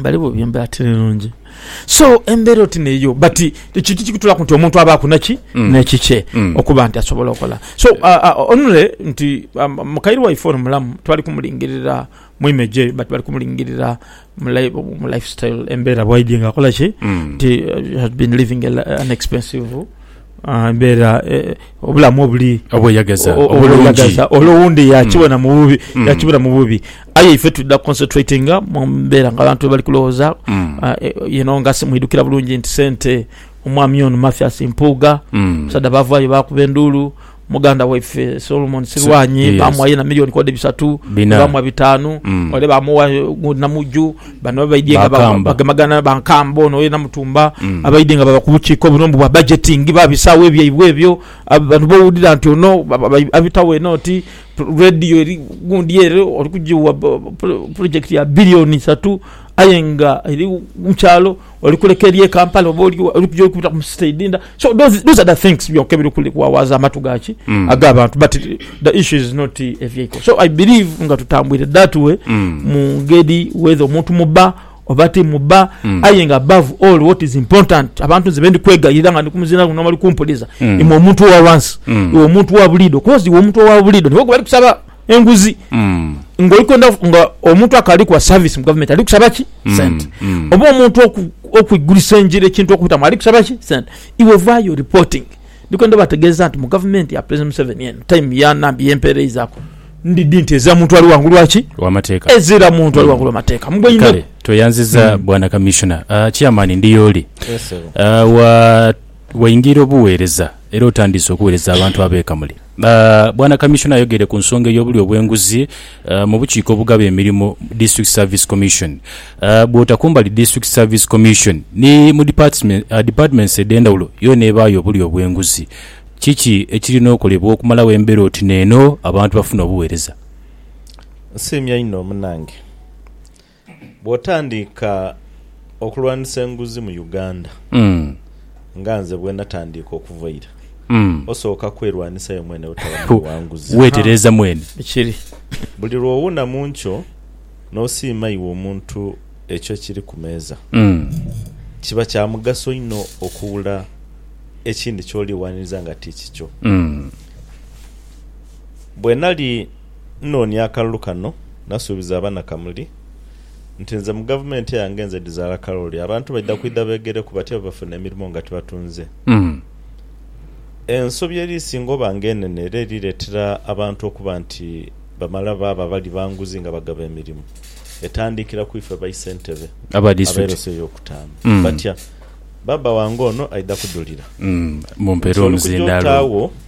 Bali bubi embera tiri nungi. So embera oti neyo but ekintu kikutulaku nti omuntu abaku naki mm. nekikye mm. okuba nti asobola okola. So uh, uh, onule nti um, mukairi waife ono mulamu twali kumulingirira mwime gye but bali kumulingirira mu lifestyle embera bwaidye nga akola ki mm. nti uh, had been living an expensive Mbeera obulamu obuli obweyagaza ole owundi yakibona mm. mububi mm. yakibona mububi aye ife tuda concentratinga mumbeera nga abantu bali kulowooza mm. ah, eh, yeno nga simwidukira bulungi nti sente omwami ono mathias mpuuga musadha bavayo bakuba enduulu muganda waife Solomon Silwanyi yes. bamwa yena milioni kode bisatu bamwa bitanu mm. ole bamuwa namuju bano baidye nga bagemagana bankamba ono yena mutumba mm. abaidye nga baba kubukiiko obuno mbu bwa budgeting babisaawo ebyaibwe ebyo abantu bowulira nti ono abitawo enoti radio eri gundi ere oli kugiwa project ya bilioni isatu aye nga eri mukyalo oli kuleka eby'e Kampala oba oli wa, oli kuja oli kubita mu city edhindha. So those, those are the things byonka ebiri kuli kuwawaaza amatu ga ki? Ag'abantu but the issue is not a vehicle. So I believe nga tutambwire that way mu ngeri whether omuntu muba oba ti muba aye nga above all what is important abantu nze be ndi kwegayirira nga ndi ku muzindaalo guno n'abali kumpuliza, imwe omuntu owa wansi, iwe omuntu owa buliidho coz iwe omuntu owa buliidho niwe gwe bali kusaba. enguzi nga oli kwenda nga omuntu akali kuwa service mu government ali kusaba ki sente mm. oba omuntu oku- okwigulisa enjira ekintu okubitamu ali kusaba ki sente iwe vayo reporting ndikwenda obategeeza nti mu government ya president museveni eno time ya nambi yempereizaku ndidi nti ezira muntu ali wangulu waki wamateeka ezira muntu ali wangulu amateeka kale mugweine tweyanziza bwana commissioner uh, chairman ndiyooli Yes, sebo. uh, wa Waingira obugheereza era otandiise okuweereza abantu ab'e Kamuli. Bwana Kamisona ayogeire ku nsonga ey'obulyo bw'enguzi mu bukiiko obugaba emirimu, District Service Commission. Bw'ota kumbali District Service Commission, ni mu departments edh'endhawulo yoona ebaayo obulyo obw'enguzi. Kiki ekirina okolebwa okumalawo embeera oti n'eno abantu bafune obuweereza? Nsiimye inho munange. Bwotandiika okulwanisa enguzi mu Uganda nga nze bwenatandiika okuva eira, osooka kwerwanisayo mwene butaba muli wa nguzi. Wetereeza mwene. Buli lwowuna mu nkyo n'osiima iwe omuntu ekyo ekiri ku meeza, kiba kya mugaso inho okuwula ekindi ky'oli waniriza nga ti kikyo. Bwenali Nnoonia akalulu kano nasuubiza abanakamuli nti nze mu gavumenti yange nze dhizaala kalooli abantu baidha kwidha beegereku batya bwe bafuna emirimo nga tibatunze. Ensobi eri isinga oba nga enene era eri leetera abantu okuba nti bamala baaba bali ba nguzi nga bagaba emirimo etandiikira ku ife baisentebe ab'eroso ey'okutaanu. Batya? Baba wange ono aidha kudhulira nti oli kuja otaagho.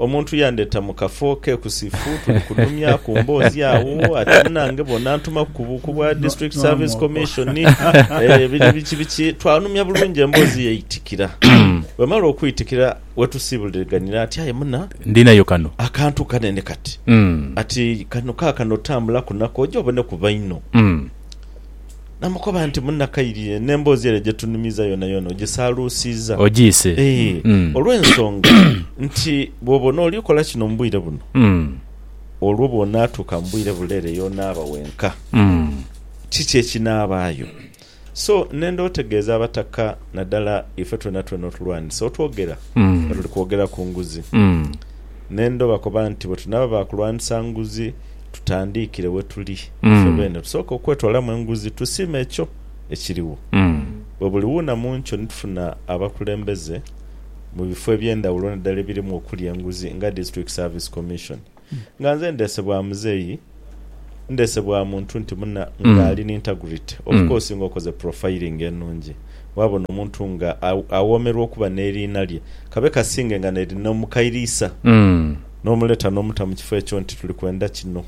Omuntu yandheta mu kafo kekusifu, tuli kunhumya ku mboozi agho, ate munange bw'onantumaku ku buuku bwa District Service Commission, eh, biri biki biki, twanhumya bulungi emboozi yaitikira. Bwemala okwitikira, wetusiibuliriganira ati, Aye muna, Ndinayo kano. akantu kanene kati. Mm. Ati, Kano kaakano tambulaku nako oje oboneku baino. Mm. Namukoba nti, Munnakairire, n'emboozi ere gye tunumiiza yoonayoona ogisaaluusizza. Ogiise. Ee, olw'ensonga nti bw'oba onoolyukola kino mu bwire buno, olwo bw'onaatuuka mu bwire bule ere y'onaaba wenka, kiki ekinaabaayo? So nenda otegeeze abataka, nadala ife twenatwena otulwanise otwogera nga tuli kwogera ku nguzi. Nenda obakoba nti, Bwe tunaaba ba kulwanisa nguzi, tutandiikire we tuli ife beene, tusooke okwetwalamu enguzi tusiime ekyo ekiriwo. Bwe buliwuuna mu nkyo ni tufuna abakulembeze mu bifo eby'endhawulo naddala ebirimu okuli enguzi nga District Service Commission. Nga nze ndeese bwa muzeeyi, ndeese bwa muntu nti muna nga ali ni integrity. Of course nga okoze profiling enungi, waabona omuntu nga awoomerwa okuba n'eriina lye, kabe kasinge nga n'eri n'omukairiisa. N'omuleta n'omuta mu kifo ekyo nti tuli kwenda kino.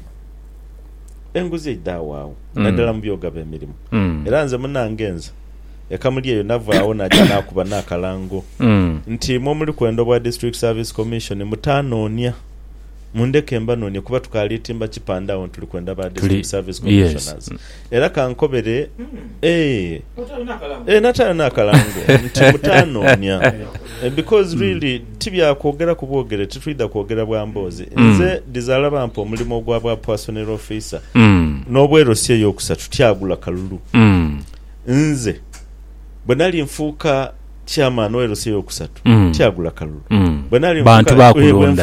Enguzi eidhagho agho, naidhala mu by'ogaba emirimu. Era nze munange nze e Kamuli eyo navaagho naaja naakuba n'akalango nti imwe omuli kwenda obwa District Service Commission mutaanoonia, mundheke mbanoonie kuba tukaali timba kipande agho nti tuli kwenda ba District Service Commissioners. Era ka nkobere, ee, ee, nataayo n'akalango nti mutaanoonia. Because really ti bya kwogera ku bwogere, titwidha kwogera bwa mboozi. Nze dhizaala bampa omulimo ogwa bwa Puasonero Ofiisa, n'obwerosi ey'okusatu tyagula kalulu. Nze bwe nali nfuuka Chairman w'LC ey'okusatu tiagula kalulu. Bwe nali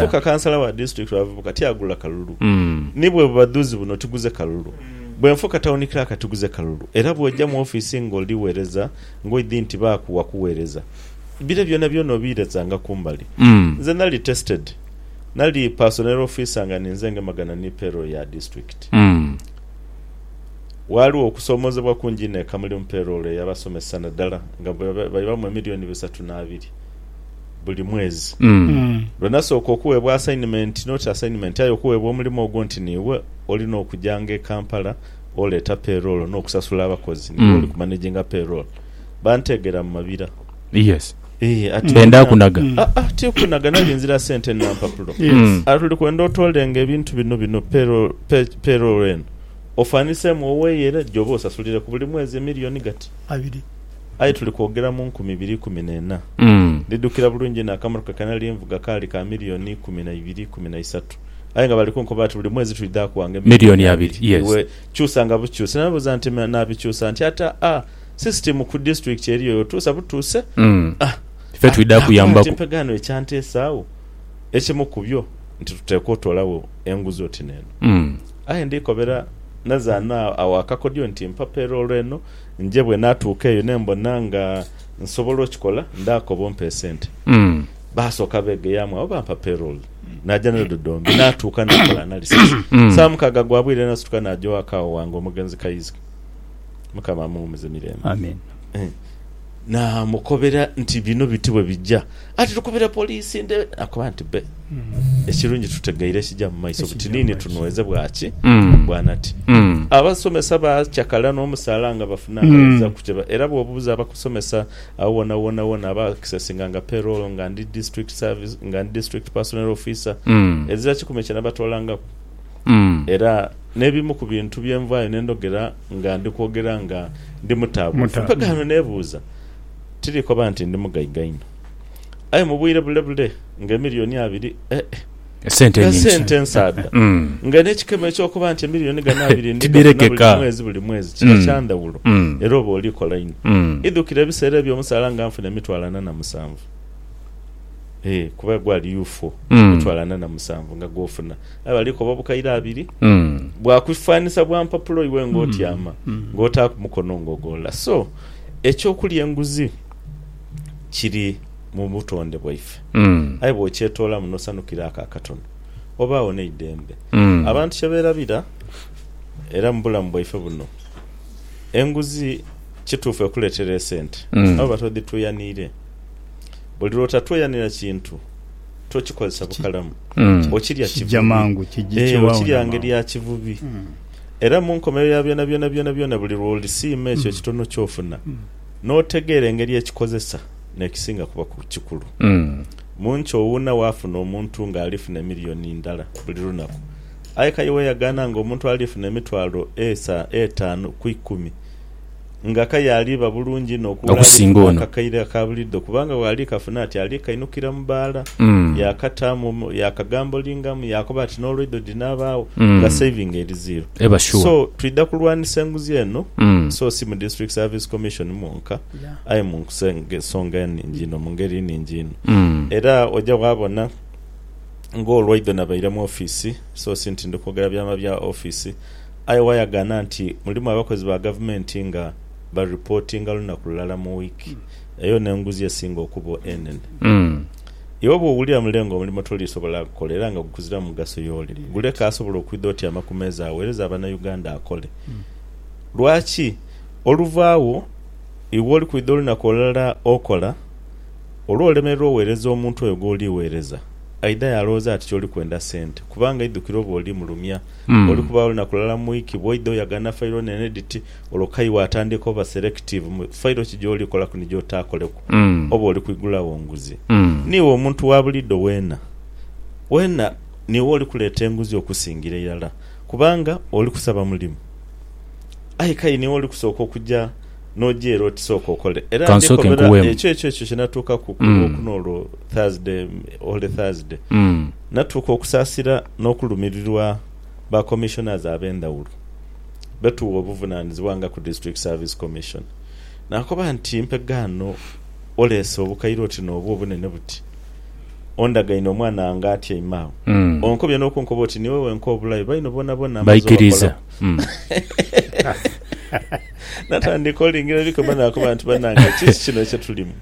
nfuka kansala wa disitulikiti w'abavubuka tiagula kalulu. Ni bwe bubadhuzi buno tiguze kalulu. Bwe nfuka tawuni clerk tiguze kalulu. Era bw'oja mu ofiisi ng'oli wereza ng'oidhi nti baakuwa kuwereza, bire byonabyona obiirezanga ku mbali. Nze nali tested. Nali personel officer nga ninze ngemagana ni payroll ya disitulikiti. Ghaligho okusoomoozebwa kungi inho eka muli mu peeroolo ey'abasomesa naddala nga baibamu emiliyoni bisatu n'abiri buli mwezi. Lwe nasooka okuweebwa asayinimenti, noti asayinimenti aye okuweebwa omulimo ogwo nti niiwe olina okujanga e Kampala oleeta peeroolo n'okusasula abakozi, niiwe oli kumanaginga peeroolo, banteegera mu mabira. Ee, ati Ndenda muna- kunaga. Mm. Ah, ah, ti kunaga nange nzira sente na mpapulo Mm. ati oli kwenda otolenga ebintu bino bino payroll- pay- payroll eno ofanisemu oweyere gyobe osasulire ku buli mwezi emiliyoni gati Abiri. aye tuli kwogera mu nkumi ibiri ikumi nena Mm. ndidukira bulungi inho akamotoka kenali nvuga kaali ka miliyoni ikumi na ibiri ikumi na isatu aye nga bali kunkoba ati buli mwezi twidha kuwanga Miliyoni abiri, yes. iwe kyusa nga bukyusi namubuza nti "Ma- nabikyusa nti ata a System ku district eriyo yotuusa butuuse Mm. ah, Ife twidha ah, nakoba nti kuyambaku. empegaano ekyanteesa agho ekimu ku byo nti tuteekwa otoolagho enguzi oti n'eno. Mm. Aye ndikobera nazaana agho akakodyo nti mpa payroll eno nje bwenaatuuka eyo nembona nga nsobola okikola ndaakoba ompe esente. Mm. Baasooka beegeyaamu agho bampa payroll naja nayo Dodoomi naatuuka nakola analysis. Mm. Saamukaaga gwa bwire nasituka naja ewaka agho wange omugenzi Kayizike. Mukama amuwumuze mirembe. Amen. Naamukobera nti bino biti bwe bijja ati tukubire poliisi nde akuba nti be. Ekirungi tutegeire ekija mu maiso butiniini tunweze bwa ki bwa nati. Abasomesa baacakala n'omusaala nga bafunangaiza ku kye era bw'obuuza abakusomesa agho wona wona wona aba accesinga nga payroll nga ndi district service nga ndi district personnel officer ezira kikumi kye nabatoolangaku. Era n'ebimu ku bintu bye nvaayo ne ndhogera nga ndi kwogera nga ndi mutaabuufu. Mpaka ghano neebuuza, Tiri koba nti ndi mugaiga inho? Aye mu bwire bule bule nga emiliyoni abiri ee nga sente nsaadha! Nga n'ekikemo eky'okuba nti emiliyoni ghano abiri ndi gafuna buli mwezi buli mwezi kiba kya ndhawulo era oba oli kola inho. Idhukira ebiseera eby'omusaala nga nfuna emitwalo ana na musanvu, ee kuba gwali UFO, emitwalo ana na musanvu nga gw'ofuna. aye bali koba obukaire abiri bwa kwifanisa bwa mpapula oiwe nga otyama nga otaaku mukono nga ogolola. So, eky'okulya enguzi kiri mu butonde bwaife, aye bw'okyetoolamu n'osanukira ako akatono, obagho n'eidembe. Abantu kye beerabira era mu bulamu bwaife buno, enguzi kituufu ekuleetera esente aye oba todhitweyaniire. Buli lw'otatweyanira kintu. Tokikozesa bukalamu, okirya kivubi, ee, okirya ngeri ya kivubi. Era mu nkomerero ya byonabyona, byonabyona, buli lw'olisiima ekyo ekitono ky'ofuna, n'otegeera engeri ekikozesa, n'ekisinga kuba kikulu. Mu nki owuuna waafuna omuntu nga alifuna emiliyoni ndala buli lunaku, aye k'aye weyagaana nga omuntu alifuna emitwalo etaanu ku ikumi? Nga ka yaaliba bulungi inho okuula alifuune akakaire aka buliidho, kubanga bw'ali kafuna ati ali kainukira mu baala, yaakataamu, yaakagambolingamu, yaakoba ati n'olweidho dhinaabaawo nga saving eri zero. So, twidha kulwanisa enguzi eno, so si mu District Service Commission mwonka, aye mu nsonga enhingi inho, mu ngeri enhingi inho. Era oja waabona ng'olweidho nabaire mu ofiisi, so si nti ndi kwogera byama bya ofiisi, Aye wayagaana nti mulimu abakozi ba gavumenti nga baripootinga lunaku lulala mu wiiki, eyo n'enguzi esinga okuba enene. Iwe bw'owulira mule nga omulimo toliisobola gukola era nga gukuzira mu mugaso y'oli, guleke asobola okwidha otyama ku meeza aweereze Abanauganda akole. Lwaki oluva agho iwe oli kwidha olunaku olulala okola, olwolemererwa oweereza omuntu oyo gw'oli weereza, aidha yaalowooza ati ky'oli kwenda sente kubanga aidhukira oba oli mulumya Olikubaagho lunaku lulala mu wiiki bw'oidha oyagana fayiro n'enediti, olwo kayi waatandika oba serekitiivu mu fayiro ki gy'olikolaku ni gy'otaakoleku oba oli kwigulagho nguzi. Niiwe omuntu wa buliidho weena weena niiwe oli kuleeta enguzi okusingira irala kubanga oli kusaba mulimu. Aye kayi niiwe oli kusooka okuja n'oja ere oti sooka okole. Era ndikobera ekyo ekyo ekyo kye natuukaku ku Lwokuna olwo Thursday, Holy Thursday. natuuka okusaasira n'okulumirirwa ba Commissioners ab'endhawulo be tugha obuvunaanizibwa nga ku District Service Commission. Naakoba nti, Mpegaano, oleese obukaire oti n'obwo obunene buti? Ondagaine omwana wange atyaime agho? Onkobye n'okunkoba oti niiwe wenka obulayo, baino boonaboona amaze obakolaku? Natandika olingira ebikoba naakoba nti, Banange, kiki kino kye tulimu?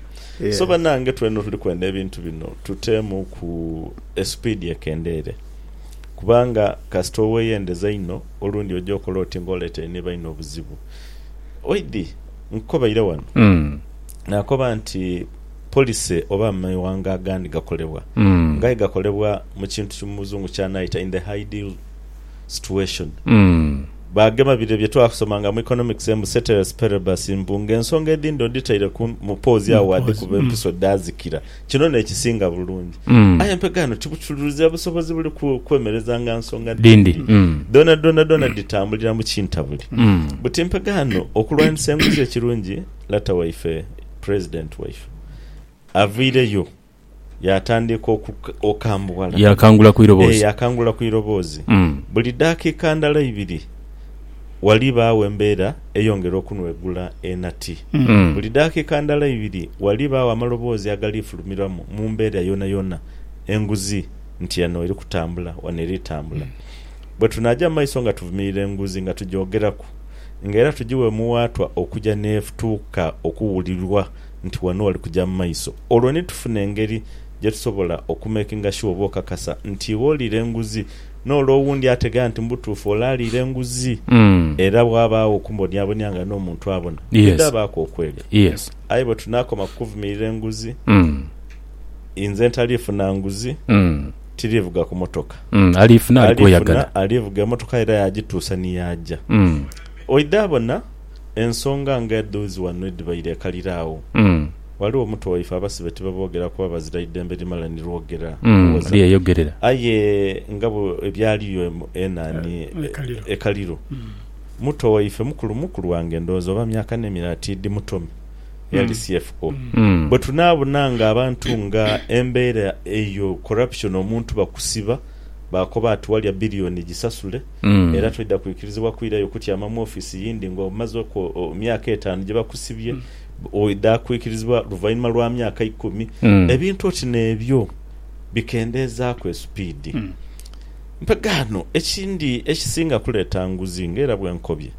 So banange twena otuli kwenda ebintu bino tuteemuuku esipiidi ekendeere kubanga kasita oweyendeza inho olundi oja okola oti nga oleetere ni baino obuzibu. Oidhi nkukobaire wano naakoba nti policy oba amewanga agandi gakolebwa nga aye gakolebwa mu kintu ki Muzungu kyanaayita in the hideal, situation. Baagema bire bye twasomanga mu economics mbu ceteris paribus mbu ng'ensonga edhindi odhitaire ku mu poozi agho waadhikuba empiso dhaazikira. Kino n'ekisinga bulungi. Aye mpega eno tibutururizia busobozi buli ku kwemerezanga nsonga dhindi. Dhoona dhoona dhoona dhitambulira mu kintabuli. Buti mpega eno okulwanisa enguzi ekirungi lata waife, president waife avaireyo. Yaatandika okambuwala. Yaakangula ku iroboozi. Ee, yaakangula ku iroboozi. Buli daakika ndala ibiri ghalibaagho embeera eyongera okunwegula enati. Buli daakika ndala ibiri ghalibaagho amaloboozi agali fulumirwamu mu mbeera yoonayoona enguzi nti eno eri kutambula, wano eri tambula. Bwe tunaaja mu maiso nga tuvumirira enguzi, nga tugyogeraku, nga era tugigha omuwaatwa okuja n'etuuka okuwulirwa, nti wano wali kuja mu maiso, olwo ni tufuna engeri gye tusobola okumakinga shuwa oba okakasa nti iwe oliira enguzi n'ole owundi ategera nti mu butuufu ole aliira enguzi. Era bwabaagho okumbonyabonya nga n'omuntu abona, bwidhabaaku okwelya. Aye bwe tunaakoma ku kuvumirira enguzi, inze ntaliifuna nguzi, tiriivuga ku motoka. Aliifuna alivuga emotoka era yaagituusa ni yaaja. Oidhabona? Ensonga nga edho zi wano edhibaire ekalira agho. Ghaligho omuto waife abasibe tibaboogera kuba bazira idembe limala ni lwogera kuwoza. Aye nga bwe byaliyo enani ekaliro, muto waife mukulu, mukulu wange ndowooza oba myaka n'emira ati idi Mutomi eyali CFO, bwe tunaabona nga abantu nga embeera eyo corruption omuntu bakusiba baakoba ati walya billion gisasule, era toidha kwikirizibwa kwirayo kutyama mu ofiisi yindi nga omazeku myaka etaanu gye bakusibye, oidha kwikirizibwa luvainhuma lwa myaka ikumi. Ebintu oti n'ebyo bikendeezaaku esupiidi. Mpegaano, ekindi ekisinga kuleeta nguzi nga era bwe nkobye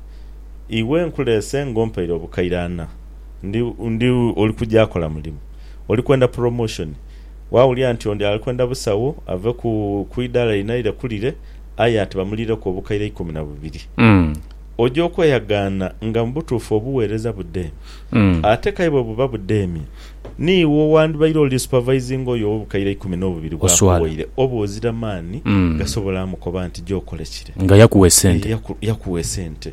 iwe nkuleese ng'ompaire obukaire ana, ndi, ndi, oli kugya kola mulimu, oli kwenda puromoshoni, waawulira nti ondi ali kwenda busawo ave ku, ku idaala lino aire ku lire, aye ati bamuliireku obukaire ikumi na bubiri. Oja okweyagaana nga mu butuufu obuweereza budheemye. Ate k'aye bwe buba budheemye, niiwe owandibaire oli supavaizinga oyo ow'obukaire ikumi n'obubiri bw'akuwoire oba ozira maani gasobola amukoba nti gy'okole kire. Nga yakuwa esente. Yakuwa esente.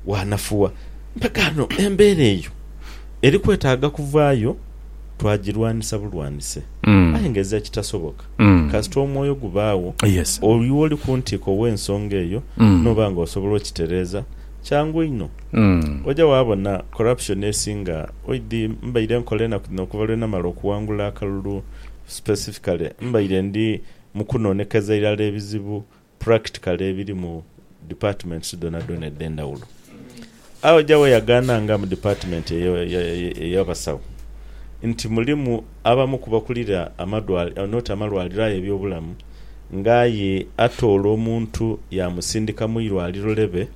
Waanafuwa. Mbagaano embeera eyo eri kwetaaga kuvaayo twagirwanisa bulwanise. Aye nga ezira kitasoboka. Kasita omwoyo gubaagho, oyo oli ku ntiiko w'ensonga eyo n'oba nga osobola okitereeza, kyangu inho oja waabona corruption esinga. Oidhi, mbaire nkola enaku dhino okuva lwe namala okuwangula akalulu, specifically mbaire ndi mu kunoonekeza irala ebizibu practically ebiri mu departments dhonadhona edhendhawulo. Agho ja weyagaana nga mu department eyo eya basawo nti mulimu abamu ku bakulira amadwaliro not amalwaliro aye ebyobulamu nga aye atoola omuntu ya musindika mu irwaliro lebe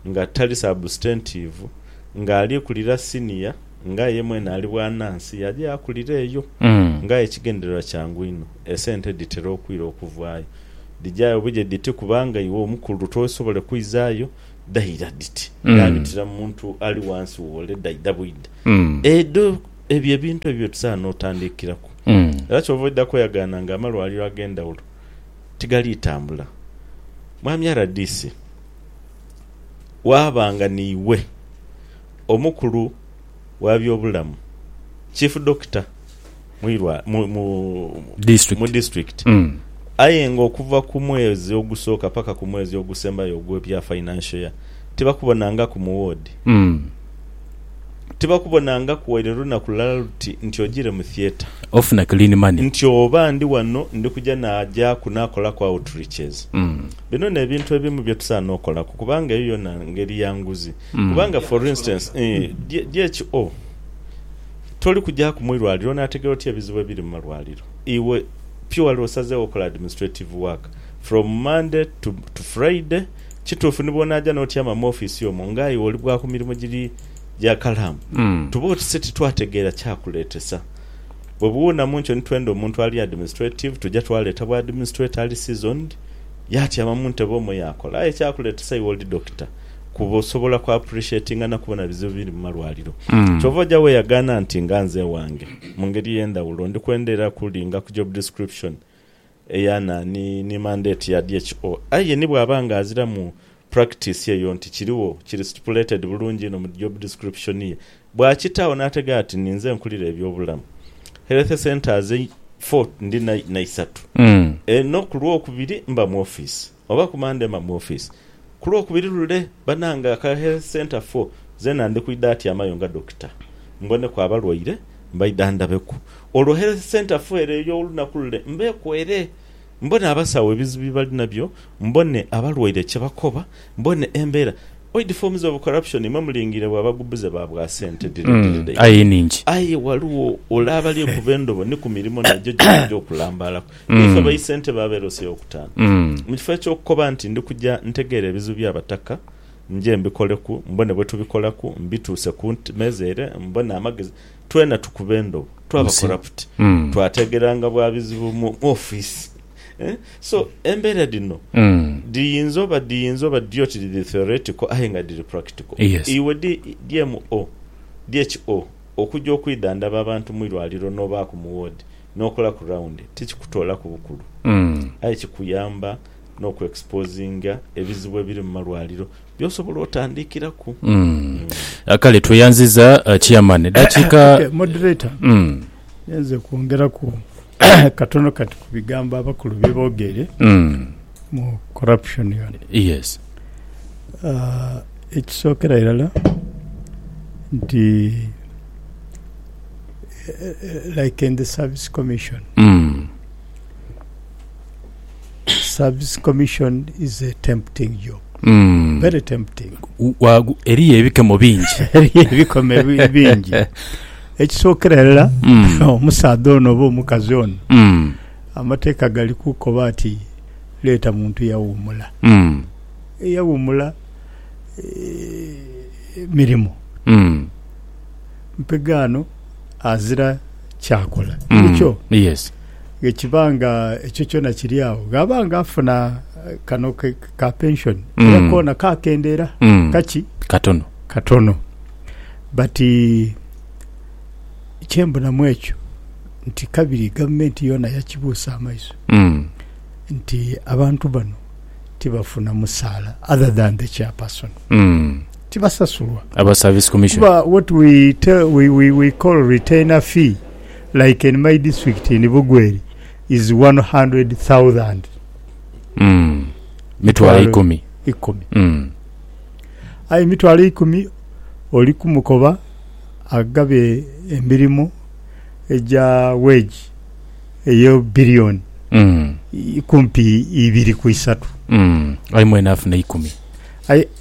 nga tali substantive nga ali kulira senior nga ye mwene ali bwa nansi yaja yakulira eyo nga aye ekigendererwa kyangu inho esente dhitera okwira okuvaayo. Dhijayo bwire dhiti kubanga iwe omukulu tosobole kwizayo dhaira dhiti era bitira mu muntu ali wansi wo ole dhaidha bwidha edho ebyo ebintu ebyo byetusaana otandikiraku era kyova oidha kweyagaana nga amalwaliro agendhawulo tigali tambula Mwami rdc waaba nga niiwe omukulu wa byobulamu Chief Doctor mwirwa mu, mu, mu district aye nga okuva ku mwezi ogusooka paka ku mwezi ogusembayo ogwe bya financial year tibakubonangaku mu ward tibakubonangaku waire olunaku lulala luti nti ojire mu theatre ofuna clean money nti oba ndi wano ndi kuja najaku nakolaku outreaches bino nebintu ebimu byetusaana okolaku kubanga eyo yona ngeri ya nguzi kubanga for instance DHO Toli kujaaku mu irwaliro onaategeera otya ebizibu ebiri mu malwaliro? Iwe purely osazeegho okola administrative work from Monday to to Friday. Kituufu ni bw'onaaja n'otyama mu office omwo nga iwe oli bwa ku mirimu giri gya kalamu, tuba oti se titwategeera kyakuleetesa. Bwe buwuuna mu nkyo ni twenda omuntu ali administrative, tuja twaleeta bwa administrator ali seasoned, yaatyama mu ntebe omwo yaakola. Aye ekyakuleetesa iwe oli doctor. kuba osobola ku appreciatinga na kubona bizibu biri mu malwaliro. Kyova oja weyagaana nti nga nze ewange, mu ngeri eyendhawulo, ndi kwendha era kulinga ku job description eya naani ni mandate ya DHO. Aye ni bwaba nga aziramu practice eyo nti kirigho, kiri stipulated bulungi inho mu job description ye, bwakitaagho nategera ati ninze nkulira ebyobulamu, health centres four ndina na isatu, eno ku lwokubiri mba mu office. Oba ku Monday mba mu office. Ku Lwokubiri lule, banange aka Health Centre foo zena ndi kwidha atyamayo nga Dokita mboneku abalwaire mbaidha ndabeku. Olwo Health Centre foo ere ey'olunaku lule mbeeku ere mbone abasawo ebizibu bye bali nabyo, mbone abalwaire kye bakoba, mbone embeera. Oid forms of corruption mwe mulingiire bwa bagubuze ba bwa sente dhire dhire dhaimwe. Aye ghaligho ole abali okuva endobo ni ku mirimo nagyo gyona egy'okulambaalaku. Nga ife baisentebe abeerosia okutaanu, mu kifo eky'okukoba nti ndi kuja ntegeere ebizibu by'Abataka nje mbikoleku, mbone bwe tubikolaku, mbituuse ku meeza ere mbone amagezi, twena tukube endhobo twaba koraputi. Twateegeranga bwa bizibu mu ofiisi. So, embeera dhino dhiyinza oba dhiyinza oba dhiri oti dhiri theoretical aye nga dhiri practical. Iwe DMO, DHO, okuja okwidhandhaba abantu mu irwaliro n'obaaku mu woodi, N'okolaku rawundi tikikutoolaku bukulu aye kikuyamba n'okwexposinga ebizibu ebiri mu malwaliro by'osobola otandikiraku. Kale tweyanziza Chairman. Dakiika. Okay, Moderator, ninze kwongeraku katono kati ku bigambo abakulu bye boogeire mu corruption ghano. Yes. Ekisookera irala nti. like in the service commission. Mm. Service commission is a tempting job. Mm. Very tempting. Wagu eriyo ebikemo bingi. eriyo ebikemo bingi. Ekisookera erala mm. omusaadha ono oba omukazi ono mm. amateeka gali kukoba ati leeta muntu yawumula mm. eyawumula e, eh, mirimu mm. mpegaano azira kyakola. Inhikyo bwe kiba nga ekyo kyona kiri agho, ghaba nga afuna kano ka pension era koona kaakendeera. Kaki? Katono. Katono. But kye mbona mu ekyo nti kabiri gavumenti yoona yakibuusa amaiso nti abantu bano tibafuna musaala other than the chairperson. tibasasulwa Aba service commission. kuba what we tell we we we call retainer fee like in my district in Bugweri is one hundred thousand Mm. Mitwalo ikumi. ikumi Mm. aye emitwalo eikumi oli kumukoba agabe emirimu egya wage eyo biliyoni Mm. i- kumpi ibiri ku isatu Mm. Aye mwene afuna ikumi. aye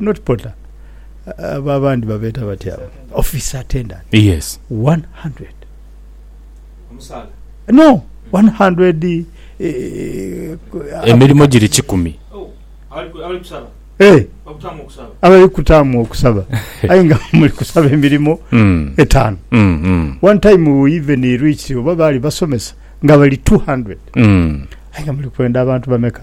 not porter abo abandi babeta batya abo office attendant yes 100 omusaala no 100 eh, emirimo giri kikumi oh, abali kusaba eh, abali kutaamu okusaba aye nga muli kusaba emirimo mm. etaano mm, mm. one time we even reached oba baali basomesa nga bali 200 mm. aye nga muli kwenda abantu bameka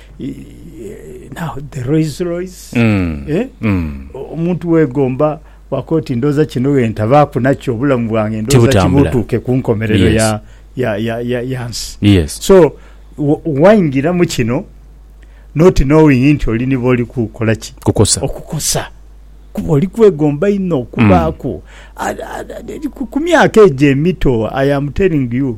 now the Rolls Royce mm. eh? mm. omuntu wegomba wako oti ndoza kino wentabaaku nakyo obulamu bwange ndoza kibutuuke ku nkomerero yes. ya, ya, ya, ya, ya nsi yes. so waingira mu kino not knowing nti oli niba oli kukola ki kukosa okukosa kuba oli kwegomba inho okubaaku mm. ku myaka egyo emito i am telling you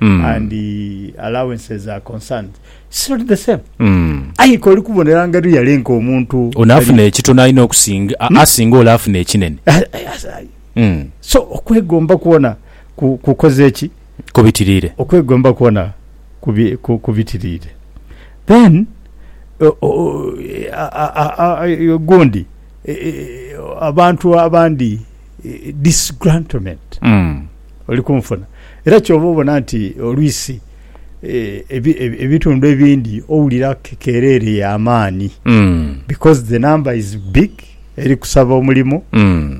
mm. and uh, allowances are concerned it's not the same mm. aye ke oli kubonera nga really nka omuntu onafuna ekitono alina okusinga hmm? asinga oli afuna ekinene ah, ah, ah, mm. so okwegomba kuona kukoze eki kubitirire okwegomba kuona kubitirire then gundi e, e, e, abantu abandi disgrantment mm. oli kunfuna. Era kyova obona nti olwisi ebitundu ebindi owulira kekereere ya maani because the number is big eri kusaba omulimu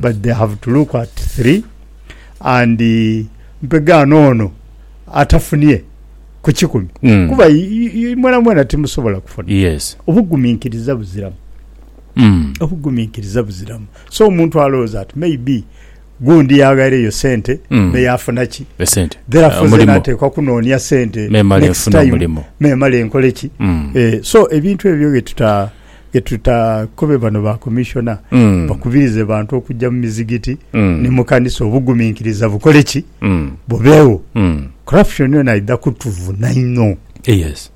but they have to look at three and mpega noono atafunie ku kikumi kuba mwena mwena timusobola kufuna. Obuguminkiriza buziramu obuguminkiriza buziramu so omuntu alowooza nti maybe gundi yaghaireyo sente mm. me yafuna ki esente therefore uh, zena atekwa kunoonia sente next time memala enkole ki mm. eh, so ebintu ebyo byetuta byetuta kube bano ba commissioner mm. bakubirize bantu okujja mu mizigiti mm. ni mu kanisa obuguminkiriza bukole ki mm. bubeewo mm. corruption yona idha kutuvuna inho yes.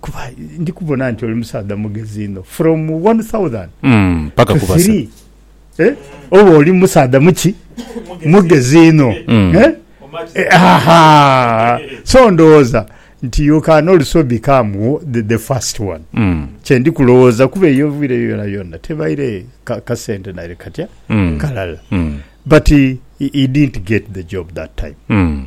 Kuba ndi kubona nti oli musaadha mugezi inho from 1000 mm, paka ku 3 eh? oba oli musaadha muki mugezi inho mm. eh? eh, so ndowooza nti you can also become the, the first one mm. kyendi kulowooza kuba eyo vire yona yona tebaire ka, ka centenary katya mm. kalala mm. but he, he didn't get the job that time mm.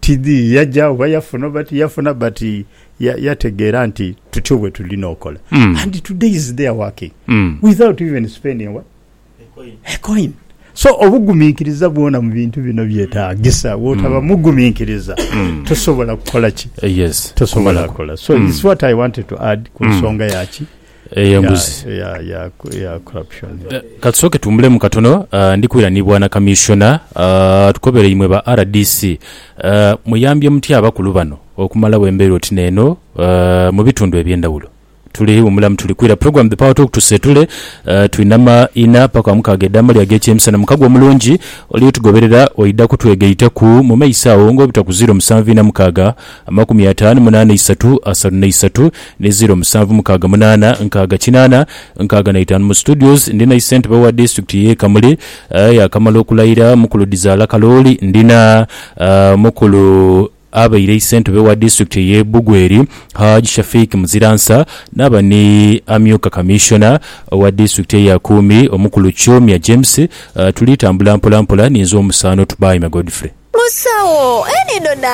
Tidhi yaja oba yafuna oba tiyafuna but yategeera nti tutyo bwetulina okola and today is there working without even spending what? A coin. So obuguminkiriza bwona mu bintu bino byetagisa, bwotaba muguminkiriza tosobola kukola ki? Tosobola kukola. So it's what I wanted to add ku nsonga ya ki? Eyo embuzi. ya, ya, ya, ya corruption. Eh, Katusooke tuwumbulemu katono. Ah, Ndi kwira ni Bwana Kamissiona. Ah, Tukobere imwe ba rdc. Ah, Muyambye mutya abakulu bano okumalawo embeera oti neeno ah, mu bitundu eby'endawulo? Tuli wumula mu Tuli Kwira Program, The Power Talk, tuseetule. Ah, Twina ma ina paka mukaaga edh'amalya ag'ekyemisana. Mukago omulungi, oli otugoberera oidha kutwegaitaku mu maiso agho ng'obutakuzira omusanvu ina mukaaga. Amakumi ataanu mu naana isatu, asatu na isatu ni ziro musanvu mukaaga munaana nkaaga kinaana nkaaga na itaanu mu studios ndina isentebe wa district ye Kamuli yakamala okulayira mukulu Dizaala Kalooli ndina mukulu abaire isentebe wa district eye Bugweri Hajj Shafik Muziransa naba ni amyuka commissioner owa district eye Akuumi omukulu Kyomya James tuli tambula mpola mpola ninze omusaano Tubaime Godfrey. Musawo, eno na